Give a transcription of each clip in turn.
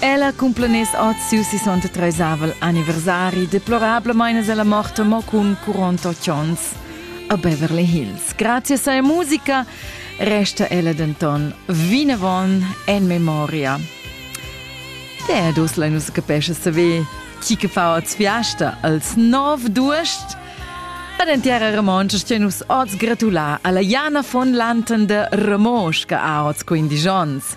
Ella cumplaness oz siu 63 anniversari, deplorablemein es ella morta mo cun 48 onns a Beverly Hills. Grazie a seia musica resta ella denton vinavon en memoria. Der dus la nus capesce saver chi che fa oz fiasta als nov duest. Ad entiera Remonsch sten nus oz gratulà alla Jana von Lanten de Remosch che ha oz 15 onns.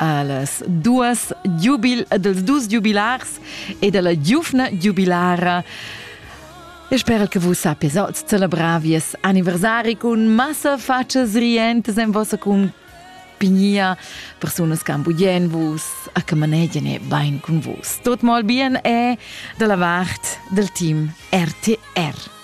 Las duas giubil ed els dus giubilars e dalla giuvna giubilara E sper che vus sapies oz celebrar vies anniversari cun massa fatschas rientas en vossa compagnia, persunas che ambugien vus a che manegien e bein cun vus. Tot mal bien e dalla vart del team RTR.